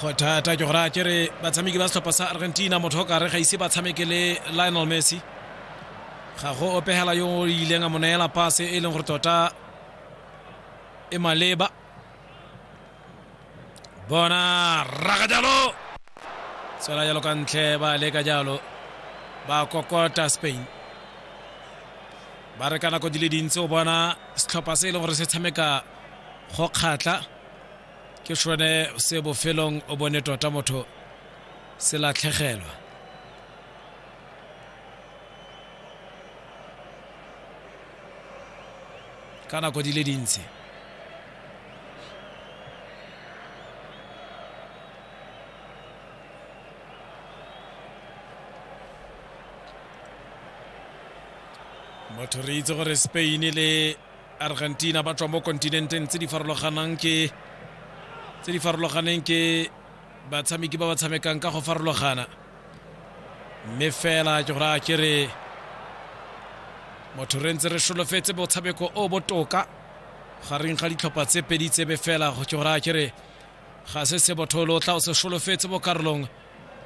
go thata ke gore a kere batshameki ba setlhopha sa argentina motho o kare ga ise ba tshameke le lionel messi ga go opegela yo o ileng a mo neela pase e leng gore tota e maleba bona raga jalo tswela jalo ka ntle ba leka jalo ba kokota spain ba re ka nako di le dintsi o bona setlhopha se e leng gore se tshameka go kgatla ke sone se bofelong o bone tota motho se latlhegelwa ka nako di le dintsi motho re itse gore spain le argentina ba tswa mo kontinenteng tse di farologanang ke tse di farologaneng ke batshameki ba ba tshamekang ka go farologana mme fela ke gore a ke re motho re ntse re solofetse motshameko o botoka gareng ga ditlhopha tse pedi tsebe fela go ke gore a ke re ga se se botho lo tla o se solofetse mo karolong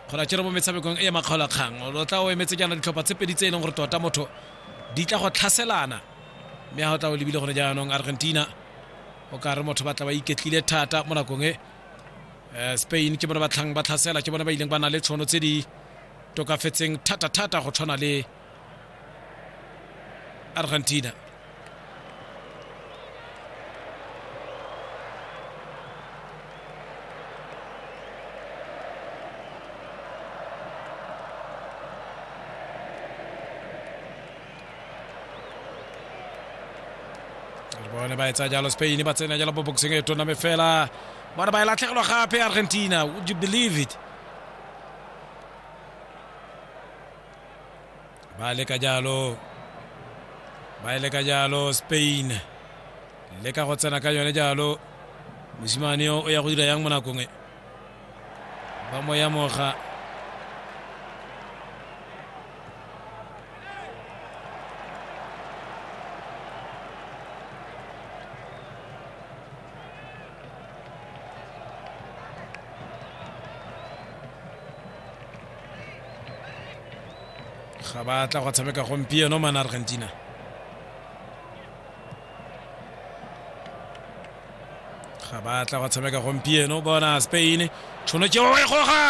kgona tšere mo metshamekong e ya makgaolakgang o tla o emetse jaana ditlhopha tse pedi tse e leng gore tota motho di tla go tlhaselana mme ga o tla o lebile gone jaanong argentina o ka re motho ba tla ba iketlile thata mo nakong e eh, spain ke bone ba tlhang ba tlhasela ke bone ba ileng ba na le tshono tse di tokafetseng thata-thata go tshwana le Argentina. bone ba etsa jalo spain ba tsena jalo mo boxing e tona me fela bona ba e latlhegelwa gape argentina would you believe it ba leka jalo ba e leka jalo spain leka go tsena ka yone jalo mosimane yo o ya go dira yang mo nakong e ba mo ya moga ga ba tla go tshameka gompieno mana argentina ga ba tla go tshameka gompieno bona spain tšhono tšeo e goga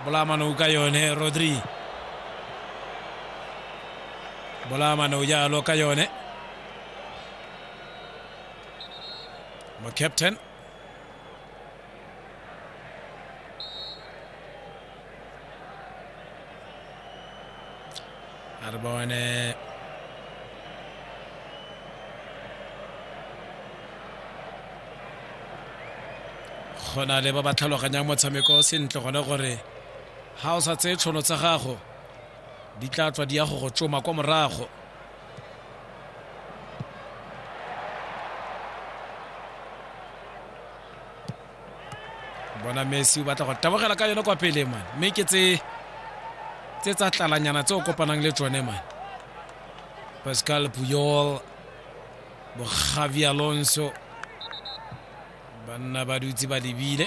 bolamanong ka yone rodri bolamanong jalo ka yone mo captain Atta boy in there. go na le ba ba tlhaloganyang motshameko o sentle gone gore ga o sa tseye tšhono tsa gago di tla tswa di ya go go tsoma kwa morago bona messi o batla go tabogela ka yone kwa pele man mme ke tse tse tsa tlalanyana tse o kopanang le tsone man pascal puyol bo javi alonso banna ba dutse ba lebile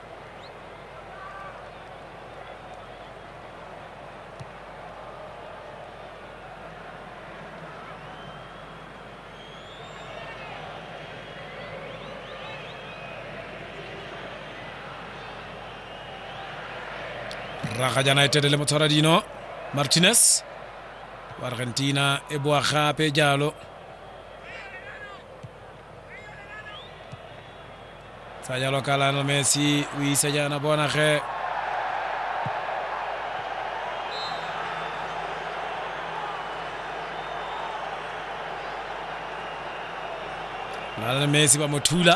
raga jana etete le motshwara dino martinez wa argentina e boa gape jalo tsa jalo ka lionel messi o isa jaana bona ge lionel messi ba mo thula